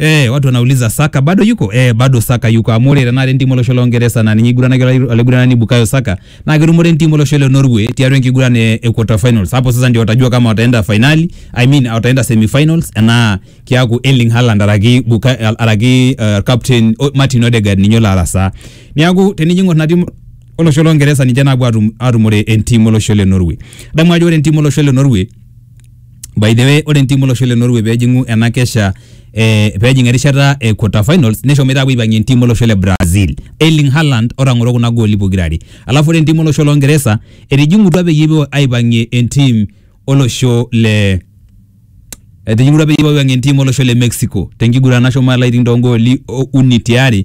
Eh, watu wanauliza Saka bado yuko? Eh, bado Saka yuko. Amu ore tenakata entimu olosho le Uingereza naa ninye eiguranaki ola- olaiguranani Bukayo Saka naa ketumore entimu olosho le Norway tiatua enkiguran e, e quarter finals. Hapo sasa ndio watajua kama wataenda finali, I mean wataenda semifinals enaa kiaku Erling Haaland araki Bukayo araki uh, captain o- Martin Odegaard ninye olo arasaa. Niaku tenijo ing'or ina timu olosho le Uingereza ninche naapuo atum, atumore entimu olosho le Norway. Adamu ajo ore entimu olosho le Norway By the way, ore entiim olosho le Norway pejing'u ena kesha eh, pejing erishata e quarter finals neshomoita apuo aipang'ie entiim olosho le Brazil Erling Haaland otang'oro kuna gooli pokira are alafu ore entiim olosho lo Ngeresa etijing'utua peyie epuo aipang'ie entiim olosho le etijing'utua peyie epuo aipang'ie entiim olosho le Mexico tenkiguran nashomo alo aiting toongooli o- uni tiari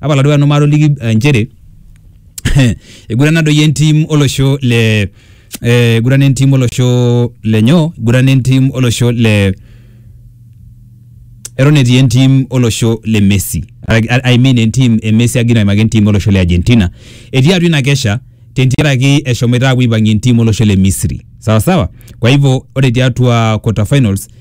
Tapala duo nanu matoliki eh, nchere eigurana doi entim olosho le eh, eigurana entim olosho le nyoo eigurana entim olosho le eton etii entim olosho le Messi I- I mean entim e Messi agira aimaki entim olosho le Argentina etii atua ina kesha tentiaraki eshomoita apuo aipang'ie entim olosho le Misri sawa sawa kwa hivyo ore tiatua quarter finals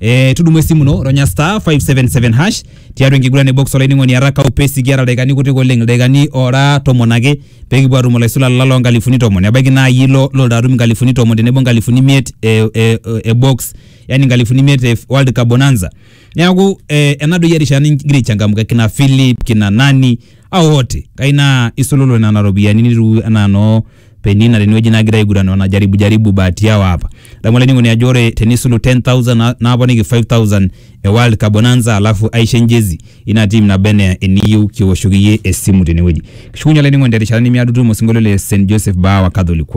Eh, tudumu esimu ino ronya star 577 hash tiatua enkiguran e box olainining'oni araka upesi kiata ildaikani kutik oleng ildaikani ora tomon ake pekipuo atum olaisulani lalo nkalifuni tomon ebaiki naa iyie ilo loldo atum nkalifuni tomon tenebo nkalifuni imiet e, e, e box yani nkalifuni imiet e world cup bonanza neaku eh, enadoyio erishata nigira aichangamka kina philip kina nani au oti kai naa isululu nena ropiyiani nitu anaa noo penina tenewueji nagira aiguran wanajaribu jaribu bahati yao hapa adamu olainining'oni ajo ore tenisulu 10000 na- naponiki 5000 e world cup bonanza alafu aisho enjezi ina tim naba enaa eniyieu kiwoshoki iyie esimu tenewueji kishukunye olainining'oni terishata nemiado tutumo osinkolio le St Joseph Bawa Catholic